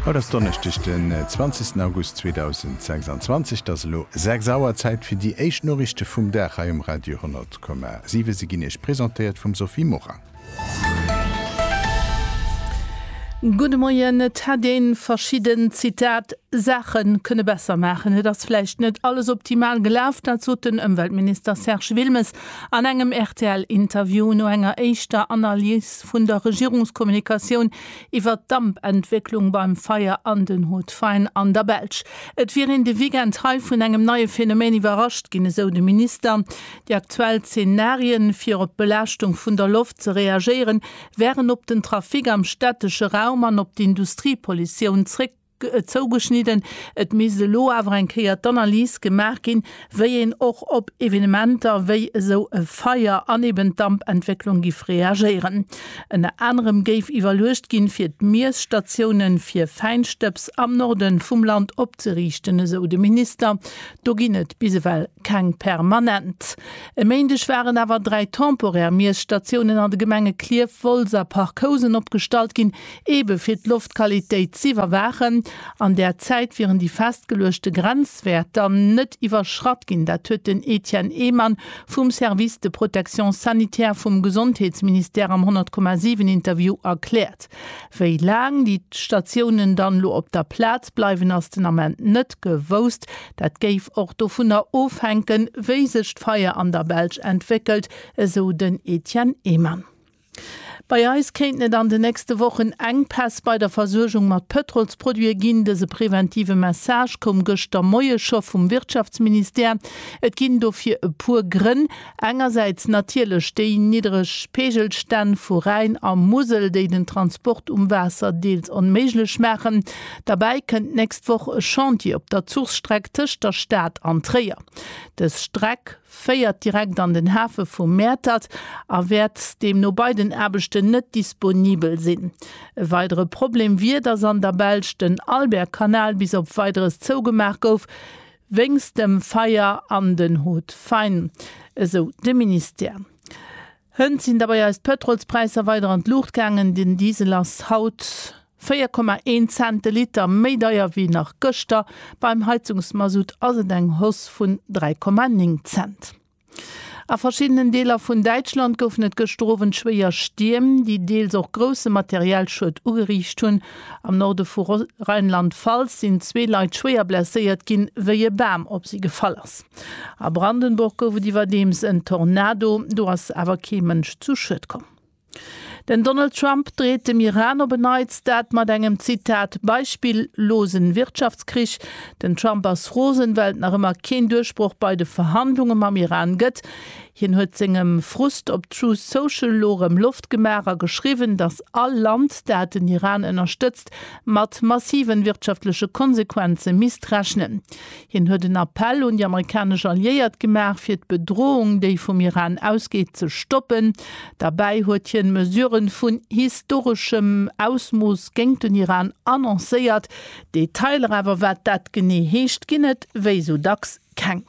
Haut ass Donneschdeg den 20 August 2026, et ass elo 6 Auer, Zäit fir déi éischt Noriichte vum Dag hei um Radio 100,7. Se ginn Iech presentéiert vum Sophie Morang. Gudde Moien, et hätt ee verschidden, Zitat, Saache kënne besser maachen. Et ass vläicht net alles optimal gelaf, dat sot den Ëmweltminister Serge Wilmes An engem RTL-Interview no enger éischter Analys vun der Regierungskommunikatioun iwwert d'Dampentwécklung beim Feier an den Hauts-de-Faine an der Belsch. Et wier een de Weekend hei vun engem neie Phänomen iwwerrascht ginn, esou de Minister. Déi aktuell Zenarien, fir op d'Belaaschtung vun der Loft ze reagéieren, wären op den Trafic am stättesche Raum an op d'Industriepollitioun zréck. zougeschnidden. Et misst elo awer eng Kéier d'Analys gemaach ginn, wéi een och op Evenementer wéi esou e Feier an eben d'Dampentwécklung giff reagéieren. Ënner anerem géif iwwerluecht ginn, fir d'Miesstatioune fir Fäinstëbs am Norde vum Land opzeriichten, esou de Minister. Do ginn et bis ewell keng permanent. E Méindeg waren awer dräi temporär Miesstatiounen an de Gemenge Klierf, Wolz a Parc Housen opgestallt ginn, Eebe fir d'Loftqualitéit z'iwwerwaachen, an där Zäit wieren déi festgeluechte Grenzwäerter net iwwerschratt ginn. Dat huet den Etienne Ehmann vum Service de protection sanitaire vum Gesondheetsministère am 100,7 Interview erkläert. Wéi laang déi Statiounen dann elo op der Plaz bleiwen, ass den Ament net gewousst. Dat géif och dovunner ofhänken, wéi sech d'Feier an der Belsch entwéckelt, esou den Etienne Ehmann. Bei eis kéinten et an de nächste Wochen Enkpäss bei der Versuergung mat Pëtrolsproduite ginn. Dëse preventive Message koum gëschter Moie scho vum Wirtschaftsministère. Et ginn dofir e puer Grënn. Engersäits natierlech déi niddereg Peegelstänn vu Rhäin a Musel, déi den Transport um Waasser deels onméiglech maachen. Derbäi kënnt d'nächst Woch e Chantier op der Zuchstreck tëscht der Stad an Tréier. Dës Streck, féiert direkt an den Hafe vu Mäertert a wäert deemno bei den Aarbechten net disponibel sinn. E weidere Problem wier, datt an der Belsch den Albertkanal bis op Weideres zougemaach gouf wéinst dem Feier an den Hautes-faines, esou de Ministère. Hënt sinn derbei eis d'Pëtrolspräisser weider an d'Luucht gaangen. Den Diesel ass haut 4,1 Cent de Liter méi deier wéi nach gëschter. Beim Heizungsmasutt ass et eng Hausse vun 3,9 Cent. A verschiddenen Deeler vun Däitschland goufen et gëschter Owend schwéier Stierm, déi deels och grousse materiell Schued ugeriicht hunn. Am Norde vu Rheinland-Pfalz sinn zwee Leit schwéier blesséiert ginn, wéi e Bam op si gefall ass. A Brandenburg gouf et iwwerdeems en Tornado, do ass awer kee Mënsch zu Schued komm. Den Donald Trump dreet dem Iran op en Neits dat mat engem, Zitat, beispillosen Wirtschaftskrich. Den Trump ass rosen, well et nach ëmmer keen Duerchbroch bei de Verhandlunge mam Iran gëtt. Hien huet sengem Frust op Truth Social elo erëm Loft gemaach a geschriwwen, datt all Land, dat den Iran ënnerstëtzt, mat massiven wirtschaftleche Konsequenze misst rechnen. Hien huet en Appell un déi amerikanesch Alliéiert gemaach, fir d'Bedroung, déi vum Iran ausgeet, ze stoppen. Derbäi huet hien Mesurë vun historeschem Ausmooss géingt den Iran annoncéiert. Detailer awer, wat dat genee heescht, ginn et wéi esou dacks keng.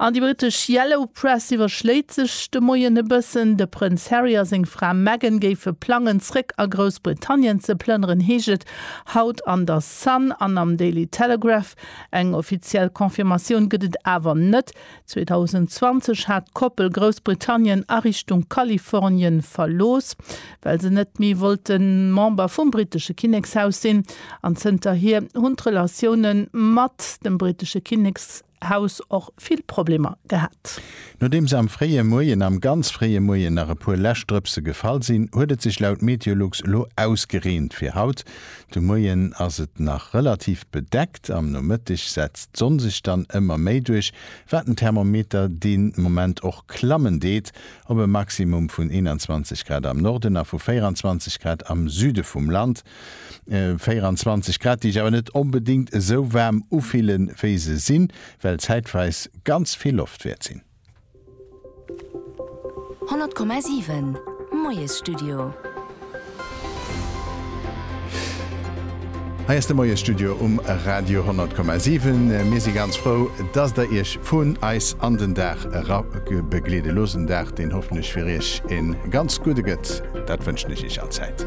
An déi britesch Yellow Press iwwerschléit sech de Moien e bëssen. De Prënz Harry a seng Fra Meghan géife plangen, zréck a Groussbritannien ze plënneren, heescht et haut an der Sun an am Daily Telegraph. Eng offiziell Confirmatioun gëtt et awer net. 2020 hat d'Koppel Groussbritannien a Richtung Kalifornien verlooss, well se net méi wollte Member vum brittesche Kinnekshaus sinn. An zënterhier hunn d'Relatioune mat dem brittesche Kinnekshaus och vill Problemer gehat. Nodeems am fréie Moien, am ganz fréie Moien, nach e puer Läschdrëpse gefall sinn, huet et sech laut Meteolux elo ausgereent fir haut. De Moien ass et nach relativ bedeckt, am Nomëtteg setzt d'Sonn sech dann ëmmer méi duerch, wat den Thermometer dee Moment och klammen deet, op e Maximum vun 21 Grad am Norden a vu 24 Grad am Süde vum Land. 24 Grad, déi sech awer net onbedéngt esou waarm ufille wéi se sinn, well zäitweis ganz vill Loft wäert sinn. 100,7 Moiesstudio. Hei ass de Moiesstudio um Radio 100,7. Mir si ganz frou, dass der iech vun eis an den Dag era begleede loosst. En Dag, deen hoffentlech fir iech e ganz gudde gëtt, dat wënschen ech iech allzäit.